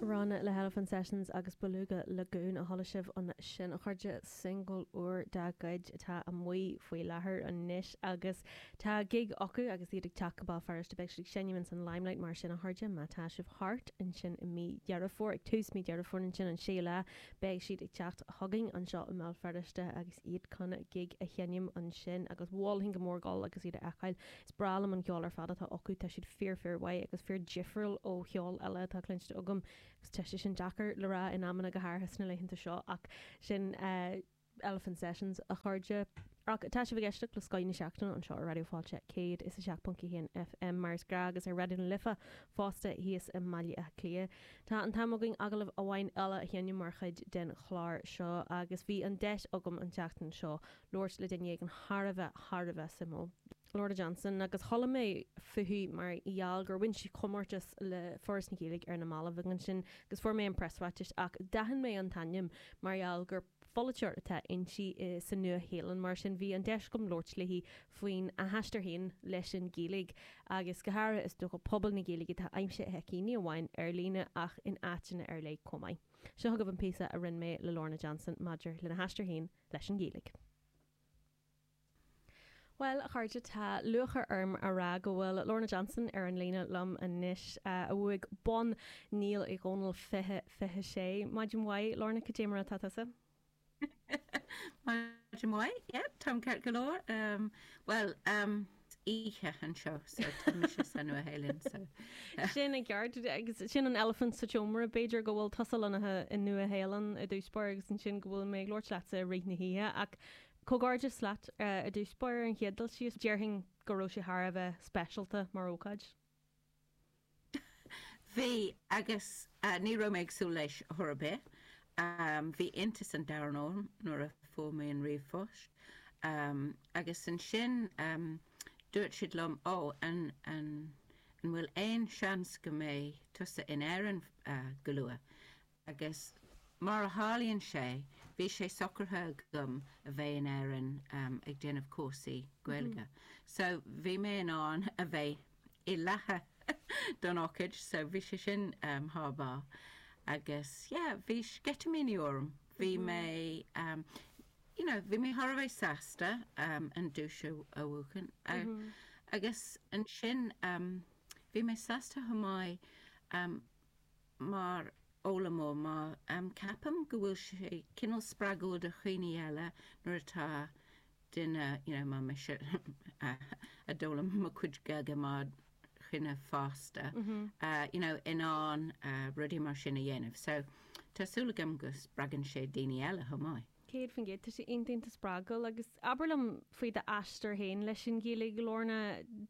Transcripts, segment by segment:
Rann le hElephant Sessions agus Beluga Lagoon a chuala sibh ansin a chairde, singil úr dá gcuid atá amuigh faoi láthair anois agus tá gig acu agus iad ag teacht go Béal Feirste, beidh siad ag seinm ins an Limelight mar sin a chairde má tá sibh thart ansin i mí Dheireadh Fómhair, ag tús mí Dheireadh Fómhair ansin an séú lá, beidh siad ag teacht chugainn anseo i mBéal Feirste agus iad chun gig a sheinm ansin agus mholfainn go mór dul agus iad a fheiceáil. Is breá liom an ceol ar fad atá acu, tá siad fíor fíor mhaith agus fíor difriúil ó cheol eile atá cluinte agam agus tá sé sin deacair le rá in amanna go háirithe sna laethanta seo ach sin Elephant Sessions a chairde. Ach tá sibh ag éisteacht le Scoth na Seachtaine anseo ar Raidió Fáilte 107.1 FM mar is gnáth agus ar Raidió na Life fosta thíos i mBaile Átha Cliath. Tá an t-am againn agallamh amháin eile a sheinm mar chuid den chlár seo agus bhí an deis agam an tseachtain seo labhairt le duine éigin thar a bheith, thar a bheith suimiúil. Lorna Johnson, agus chuala mé fúithi mar gheall gur bhain sí comórtas le Foras na Gaeilge ar na mallaibh agus ansin agus fuair mé an preasráiteas ach d'aithin mé an t-ainm mar gheall gur polaiteoir atá inti sa Nua Shéalainn mar sin bhí an deis agam labhairt léi faoin a haistear féin leis an Gaeilge agus go háirithe is dócha pobal na Gaeilge atá aimsithe aici ní amháin ar líne ach in áiteanna ar leith comh maith. Seo agaibh an píosa a rinne mé le Lorna Johnson maidir lena haistear féin leis an Ghaeilge. Bhuel, a chairde, tá lúcháir orm a rá go bhfuil Lorna Johnson ar an líne liom anois, a bhuaigh Bonn Néill Uí Dhónaill 20, 26. Maidin mhaith, Lorna, cad é mar atá tusa? Maidin mhaith, yep, táim ceart go leor. Bhuel, oíche anseo so tá mise sa Nua Shéalainn so. Sin an ceart agus sin an elephant sa tseomra. B'fhéidir go bhfuil tusa lonnaithe i Nua Shéalainn i dtús báire agus ansin go bhfuil mé ag labhairt leatsa i rith na hoíche ach comhghairdeas leat i dtús báire ar an chéad dul síos. Déarfainn go raibh sé thar a bheith speisialta mar ócáid. Bhí, agus ní raibh mé ag súil leis chor ar bith. Bhí iontas an domhain orm nuair a fuair mé an ríomhphost. Agus ansin dúirt siad liom, Ó, an bhfuil aon seans go mbeidh tusa in Éirinn go luath? Agus mar a tharlaíonn sé, bhí sé socraithe agam a bheith in Éirinn ag déanamh cúrsaí Gaeilge. So bhí mé in ann a bheith i láthair don ócáid, so bhí sé sin thar barr. Agus yeah, bhí sceitimíní orm. Bhí mé you know, bhí mé thar a bheith sásta an duais a bhuachan. Agus ansin bhí mé sásta chomh maith mar fhoghlaimeoir em ceapaim go bhfuil sé cineál spreagúil do dhaoine eile nuair atá duine you know mar mise a d'fhoghlaim mo chuid Gaeilge mar dhuine fásta you know in ann rudaí mar sin a dhéanamh so tá súil agam go spreagann sé daoine eile chomh maith. Céad faoin gcéad. Tá sé iontanta spreagúil. Agus abair liom faoi d'aistear féin leis an Ghaeilge. Lorna,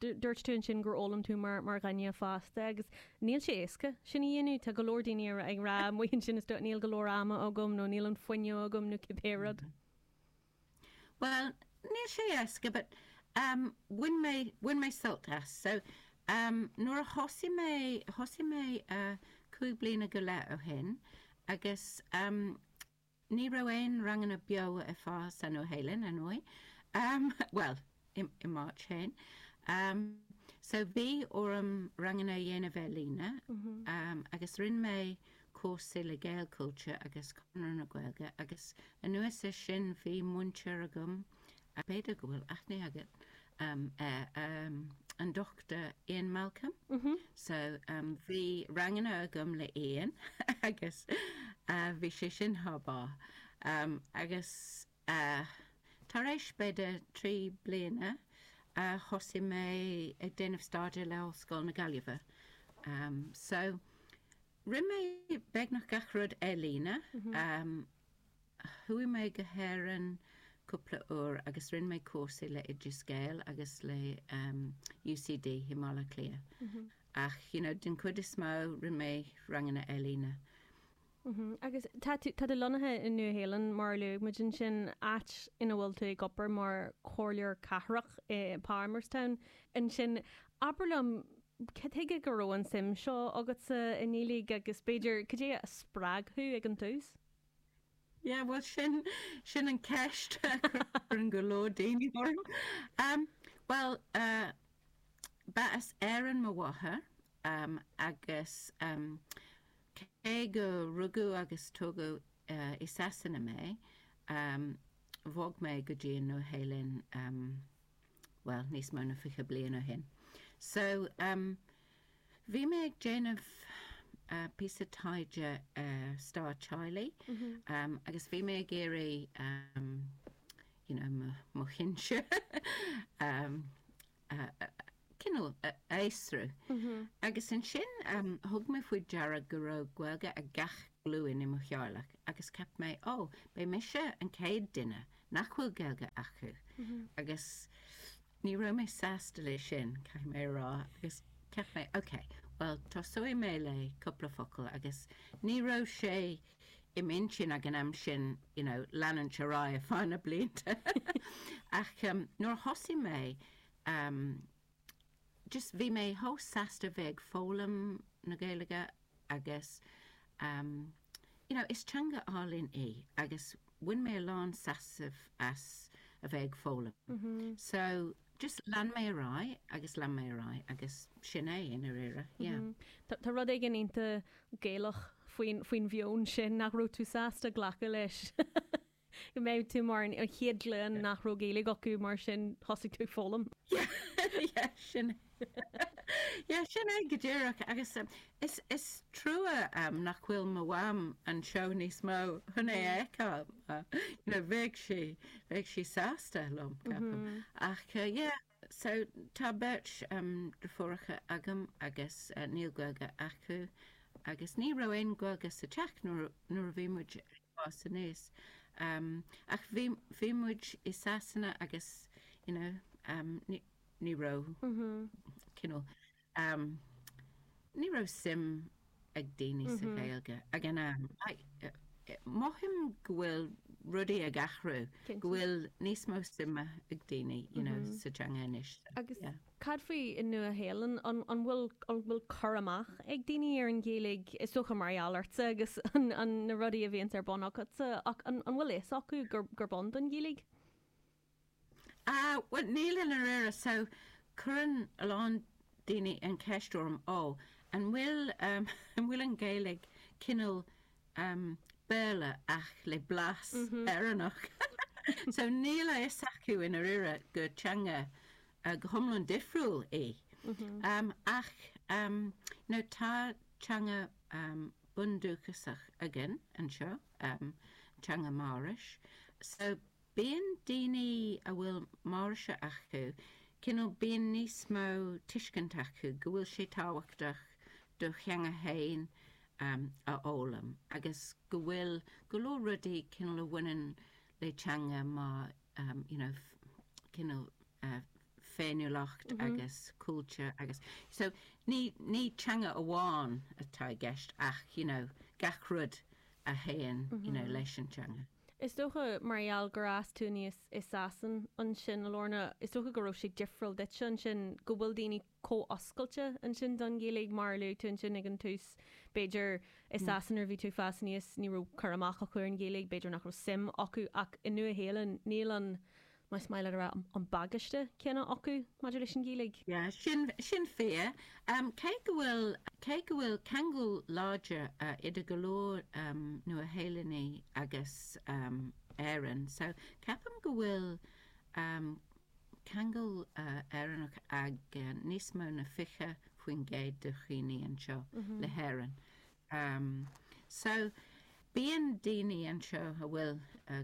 dúirt tú ansin gur fhoghlaim tú mar dhuine fásta agus níl sé éasca sin a dhéanamh. Tá go leor daoine ag rá amuigh ansin, is dóigh, 'níl go leor ama agam' nó 'níl an fuinneamh agam' nó cibé rud. Bhuel, níl sé éasca but em bhain mé, bhain mé sult as. So em nuair a thosaigh mé, thosaigh mé eh cúig bliana go leith ó shin agus em, Ní raibh aon ranganna beo ar fáil sa Nua-Shéalainn, ar ndóigh. Bhuel, i m'áit féin. So bhí orm ranganna a dhéanamh ar líne agus rinne mé cúrsaí le Gaelchultúr agus Conradh na Gaeilge agus anuas ar sin bhí múinteoir agam, b'fhéidir go bhfuil aithne agat um um an Dochtúir Ian Malcolm so um bhí ranganna agam le Ian agus uh bhí sé sin thar barr um agus uh tar éis b'fhéidir trí bliana uh thosaigh mé ag déanamh staidéar le Ollscoil na Gaillimhe um so rinne mé beagnach gach rud ar líne um Chuaigh mé go hÉirinn cúpla uair agus rinne mé cúrsaí le Oideas Gael agus le UCD i mBaile Átha Cliath. Ach you know den chuid is mó rinne mé ranganna ar líne. Agus tá tú tá tú lonnaithe i Nua Shéalainn mar a luaigh muid ansin áit ina bhfuil tú ag obair mar chomhairleoir cathrach i bPalmerston ansin. Abair liom Cad chuige go raibh an suim seo agatsa i nGaeilge agus b'fhéidir cad é a spreag thú ag an tús? Yeah, bhuel sin, sin an ceist a chuireann go leor daoine orm. Em, bhuel, eh, ba as Éirinn mo mháthair, em, agus, em, cé gur rugadh agus tógadh, eh, i Sasana mé, em, bhog mé go dtí an Nua-Shéalainn, em, bhuel, níos mó na fiche bliain ó shin. So, em, bhí mé ag déanamh, eh, píosa taighde ar stair teaghlaigh, em, agus bhí mé ag iarraidh, em, you know, mo, mo shinsir, em, a, a, cineál a fhiosrú. Agus ansin, em, thug mé faoi deara go raibh Gaeilge ag gach glúin i mo theaghlach agus ceap mé, ó, beidh mise an chéad duine nach bhfuil Gaeilge acu agus ní raibh mé sásta leis sin, caithfidh mé a rá agus cheap mé ok, bhuel tosóidh mé le cúpla focal agus ní raibh sé im intinn ag an am sin you know leanúint ar aghaidh ar feadh na blianta ach nuair a thosaigh mé, just bhí mé chomh sásta bheith ag foghlaim na Gaeilge agus ehm you know is teanga álainn í agus bhain mé a lán sásamh as a bheith ag foghlaim so just lean mé ar aghaidh agus lean mé ar aghaidh agus sin é i ndáiríre yeah. Tá rud éigin iontach Gaelach faoin mheon sin nach raibh tú sásta glacadh leis. go mbeadh tú mar an chéad ghlúin nach raibh Gaeilge acu mar sin thosaigh tú ag foghlaim. Yeah, yeah, sin é. Yeah, sin é go díreach agus um, is, is trua um, nach bhfuil mo mham anseo níos mó chun é fheiceáil. Uh, you know, bheadh sí, bheadh sí sásta liom ceapaim. Ach, uh, yeah, So, tá beirt deirfiúracha agam agus níl Gaeilge acu agus ní raibh aon Ghaeilge sa teach nuair a bhí muid ag fás aníos. Ach bhí muid i Sasana agus you know ní raibh cineál. Amm, ní raibh suim ag daoine sa Ghaeilge ag an am. Mothaím go bhfuil rudaí ag athrú, go bhfuil níos mó suime ag daoine you know, sa teanga anois. Agus cad faoi sa Nua-Shéalainn, an bhfuil bhfuil cur amach ag daoine ar an Ghaeilge, is dócha mar gheall ortsa agus na rudaí a bhíonns ar bun agatsa ach an bhfuil a fhios acu gurb ann don Ghaeilge? Bhuel, níl i ndáiríre. So, cuireann a lán daoine an cheist orm, Ó, an bhfuil, em, an bhfuil an Ghaeilge cineál, em, Béarla ach le blas Éireannach? So, níl a fhios acu i ndáiríre gur teanga, eh, go hiomlán difriúil í. Em, ach, em, you know, tá teanga, em, bundúchasach againn anseo, em, teanga Maorais. So, Bíonn daoine a bhfuil Maorais acu, cineál bíonn níos mó tuiscint acu go bhfuil sé tábhachtach do theanga fhéin a fhoghlaim agus go bhfuil go leor rudaí cineál a bhaineann le teanga mar you know cineál féiniúlacht agus cultúr agus so ní ní teanga amháin atá i gceist ach you know gach rud a théann you know leis an teanga. Is dócha mar gheall gur fhás tú aníos i Sasain ansin, a Lorna, is dócha go raibh sé difriúil duitse ansin, go bhfuil daoine chomh oscailte ansin don Ghaeilge. Mar a luaigh tú ansin ag an tús, b'fhéidir i Sasain nuair a bhí tú ag fás aníos ní raibh cur amach acu ar an Ghaeilge, b'fhéidir nach raibh suim acu ach i Nua-Shéalainn níl an Más maith leat a rá an bagáiste céanna acu maidir leis an Ghaeilge. Yeah, sin fíor. Cé go bhfuil, cé go bhfuil ceangal láidir idir go leor Nua-Shéalannaigh agus Éireann, so ceapaim go bhfuil ceangal Éireannach ag níos mó na 20% de dhaoine anseo le hÉireann. Am so bíonn daoine anseo a bhfuil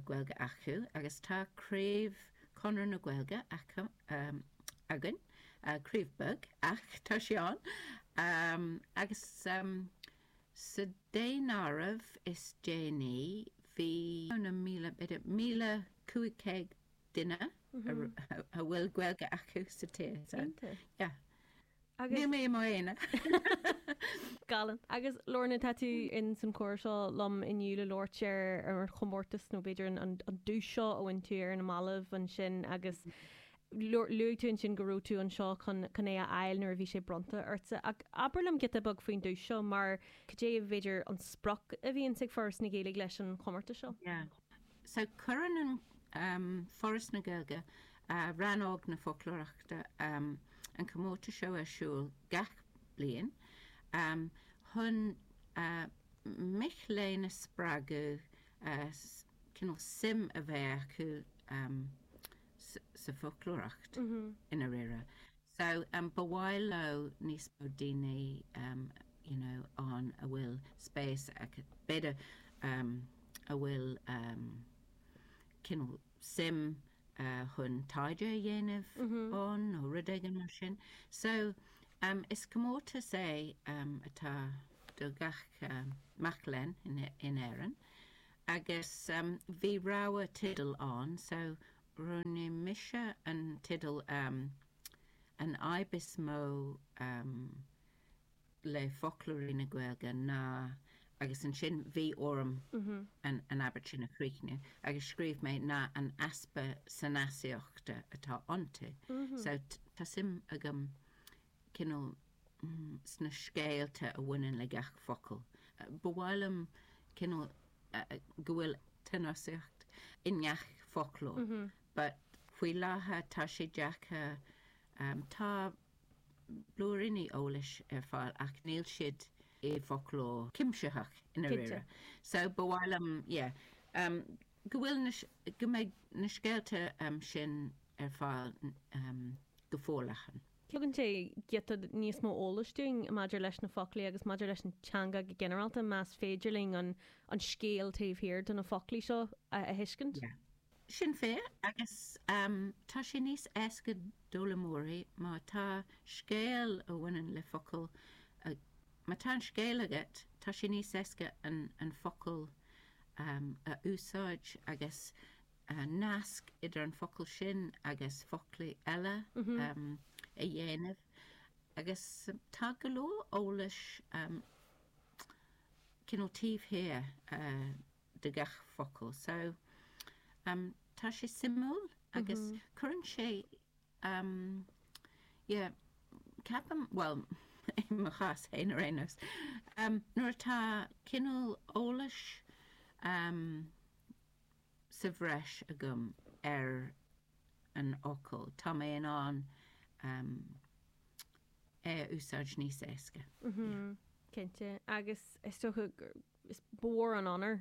Gaeilge acu agus tá craobh Chonradh na Gaeilge acu, againn, craobh beag ach tá sé ann. Am Agus sa daonáireamh is déanaí bhí míle, b'fhéidir míle cúig céad duine a bhfuil Gaeilge acu sa tír. Iontach. Yeah. Agus. Níl mé i m'aonar. Galánta. Agus Lorna, tá tú ins an chomhrá seo liom inniu le labhairt ar an chomórtas nó b'fhéidir an duais seo a bhain tú ar na mallaibh ansin agus luaigh tú ansin go raibh tú anseo chun é a fháil nuair a bhí sé bronnta ortsa. Ach abair liom giota beag faoin duais seo mar cad é b'fhéidir an sprioc a bhíonns ag Foras na Gaeilge leis an chomórtas seo? So, cuireann an Foras na Gaeilge, Rannóg na Foclóireachta, an comórtas seo ar siúl gach bliain chun mic léinn a spreagadh cineál suim a bheith acu sa bhfoclóireacht i ndáiríre. So, ba mhaith leo níos mó daoine you know ann a bhfuil spéis acu, b'fhéidir a bhfuil cineál suim chun taighde a dhéanamh ann nó rud éigin mar sin. So, is comórtas é atá do gach mac léinn in Éirinn agus bhí rogha tideal ann so Roghnaigh mise an teideal An fhadhb is mó le foclóirí na Gaeilge ná. agus ansin bhí orm an abairt sin a chríochnú agus scríobh mé ná an easpa sanasaíochta atá iontu. So tá suim agam cineál sna scéalta a bhaineann le gach focal. Ba mhaith liom cineál go bhfuil sanasaíocht i ngach foclóir but faoi láthair tá sé deacair tá blúiríní eolais ar fáil ach níl siad i bhfoclóir cuimsitheach i ndáiríre. So ba mhaith liom yeah go bhfuil go mbeidh na scéalta sin ar fáil go forleathan. Tugann sé giota níos mó eolais dúinn maidir leis na foclaí agus maidir leis an teanga go ginearálta, más féidir linn an scéal taobh thiar de na foclaí seo a thuiscint. Sin é, agus tá sé níos éasca d'fhoghlaimeoirí má tá scéal a bhaineann le focal Má tá an scéal agat, tá sé níos éasca an focal a úsáid agus an nasc idir an focal sin agus foclaí eile a dhéanamh agus tá go leor eolais cineál taobh thiar de gach focal so tá sé suimiúil agus cuireann sé ceapaim bhuel i mo chás féin ar aon nós nuair atá cineál eolais sa bhreis agam ar an fhocal. Tá mé in ann é a úsáid níos éasca. Cinnte. Agus is dócha gur mór an onóir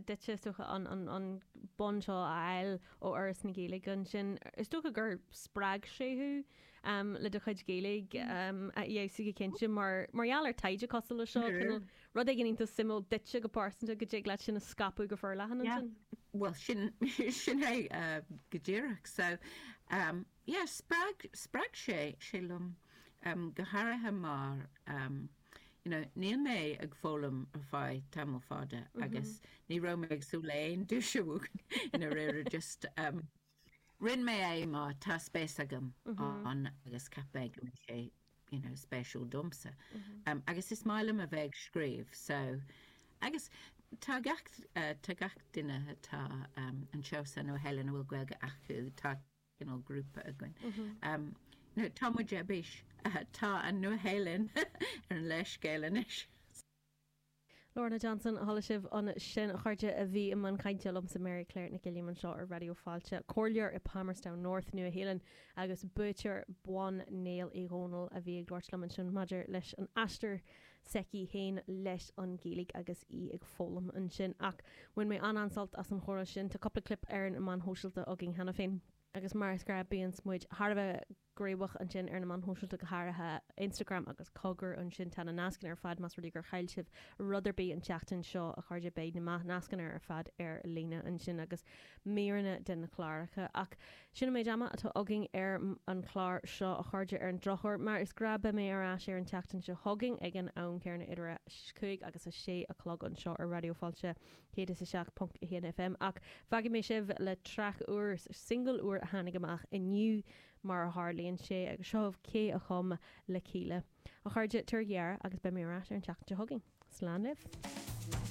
duit is dócha an bonn seo a fháil ó Fhoras na Gaeilge. Ansin is dócha gur spreag sé thú le do chuid Gaeilge a fheabhsú go cinnte mar gheall ar taighde cosúil leis seo. Rud éigin iontas suimiúil duitse go pearsanta go dtig leat sin a scaipeadh go forleathan ansin? Yeah, bhuel sin sin é go díreach. So um yeah spreag spreag sé liom um go háirithe mar um you know níl mé ag foghlaim ar feadh tamall fada agus ní raibh mé ag súil le aon duais i ndáiríre just um Rinne mé é mar tá spéis agam ann agus cheap mé go mbeidh sé you know spéisiúil domsa. Agus is maith liom a bheith ag scríobh so agus tá gach tá gach duine atá anseo sa Nua-Shéalainn a bhfuil Gaeilge acu tá cineál grúpa againn. Tá muid ar bís tá an Nua-Shéalainn ar an léarscáil anois. Lorna Johnson, chuala sibh ansin a chairde a bhí i mbun cainte liomsa, Máire Clár Nic Uilliam anseo ar Raidió Fáilte, comhairleoir i Palmerston North, Nua-Shéalainn, agus buaiteoir Bonn Néill Uí Dhónaill a bhí ag labhairt liom ansin maidir leis an aistear s'aici féin leis an Ghaeilge agus í ag foghlaim ansin. Ach bhain mé an-an-sult as an chomhrá sin. Tá cúpla clip ar na na meáin shóisialta againn cheana féin. Agus mar is gnáth bíonns muid thar a bheith. gníomhach ansin ar na meáin shóisialta, go háirithe Instagram agus cogar ansin. Tá na nascanna ar fad, más rud é gur chaill sibh rud ar bith an tseachtain seo, a chairde, beidh na nascanna ar fad ar líne ansin agus míreanna de na cláracha. Ach sin an méid ama atá againn ar an chlár seo, a chairde. Ar an drochuair, mar is gnáth, beidh mé ar ais ar an tseachtain seo chugainn ag an am céanna idir a 5 agus a 6 a chlog anseo ar Raidió Fáilte. 107.1 fm ach fágfaidh mé sibh le traic úr, singil úr a tháinig amach inniu mar a tharlaíonn sé agus seo daoibh cé a chum le Kíla. A chairde, tabhair aire agus beidh mé ar ais ar an tseachtain seo chugainn. Slán libh.